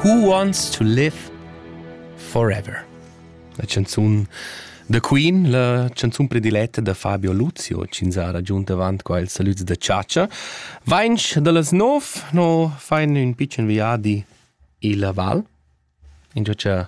Who Wants to Live Forever? La canzun da Queen, la canzun prediletta da Fabio Luzio, ch'ins ha ragiunt avant qua il salut da Ciacia. Vainch da las nov, no fain ün pitschen viadi illa val, ingio cha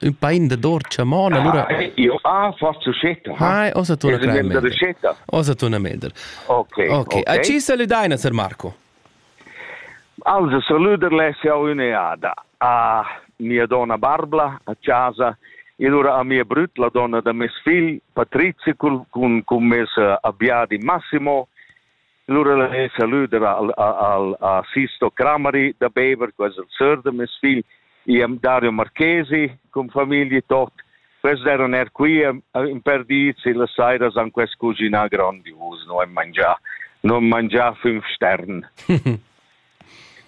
Ün pain da dor chamona, lura... Io ah, fa succetta. Ah, osa tu una crema. Osa tu una melder. Ok. Ok. A ci salutai, Sir Marco? Also, saluder le sia un'eada a mia donna Barbla a casa e allora a mia brut, la donna da mes figl, Patrizia, cun, cun mes eh, abbiadi Massimo Lura al he salüder al al a Sisto Crameri da Bever, quels al sör da meis figl, i am Dario Marchesi con famiglia tot. Quels deran er qui in per dis e las sairas han quest cuginà grandios, no am mangià, non mangià fünf stern.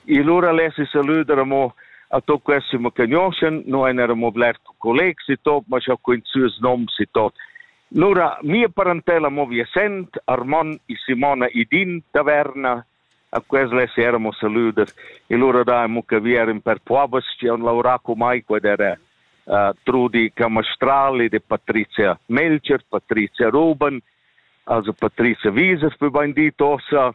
E lura lesi salüder amo a to questi mo cagnoschen, no en era mo bler colegs e tot, ma scha quin süs noms e tot. Lura mia parentella mo Viasent, Armon e Simona Idin taverna, a quels les eramo salüder e lura da amo che vi eran per povas che han lavorà con mai qued era uh, Trudi Camastral ed Patrizia Melcher, Patrizia Ruben, also Patrizia Wieser, wie beim dit ossa,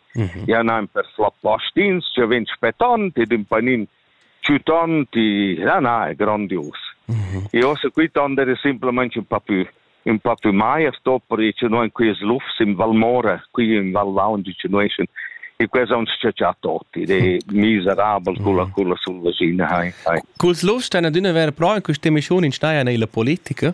Mhm. Ja nan per fla plastins, che vegn spetant ed un panin ciutant, ja na, è grandios. Mhm. E ossa qui tonder è semplicemente un po' più un po' più mai a sto per che noi in quest luf sim Valmora, qui in Val Lounge che noi sin e questa uns caccia tutti, ed è miserabel con la con la sul vagina, hai. Culs lufs stan adüna ver però in questa emissione in Steier la politica?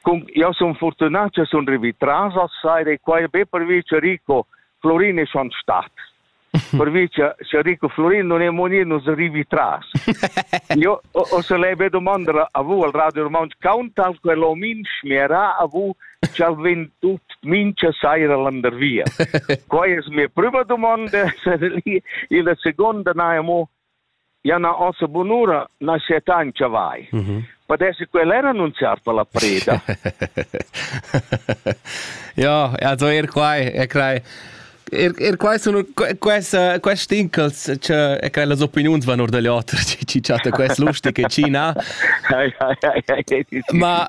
Cun jau sun fortunà che sun rivì tras a saira e quai be pervi che Rico Florin è schon stat. Pervi che se Rico Florin non è monir non arrivi tras. Io ho, ho se lei be domandare a vu al Radio Roman Countdown quello min schmera a vu ci ha vendu mincha saira landervia. Quai es mia prima domanda, se lì il seconda naimo Ja na ossa bunura nascetancha vai. Mm -hmm. Podesse quella era annunciar per la preda. ja, also er quai, er quai. Er, er quai sono questa questi incals che e cre las opiniuns van or dagli otra ci chatta quest lustig che ci na ma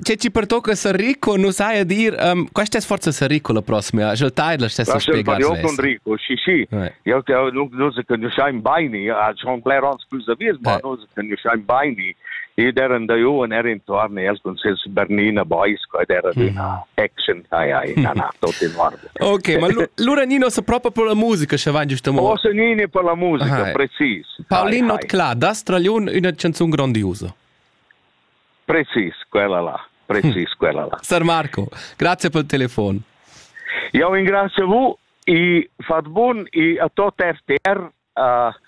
ce ci pertocca ser ricco non sai dir um, questa forza ser ricco la prossima je tai la stessa spiegar Rico sì sì Jau nus nus conoscein beni, a schon bler ans plus da vies, ma nus conoscein beni. Ed eran da Johan er intorno als concerts Bernina Boys, ed era una action, ai ai, na na, tot in ordine. Ok, ma lura Nino sa proprio per la musica, sche van giusto mo. O se Nino per la musica, precis. Paulin Notclà, das tragliun una canzun grandiosa. Precis quella là, precis quella là. Sar Marco, grazie per il telefono. Io ringrazio vu e fat bun e a tot RTR uh,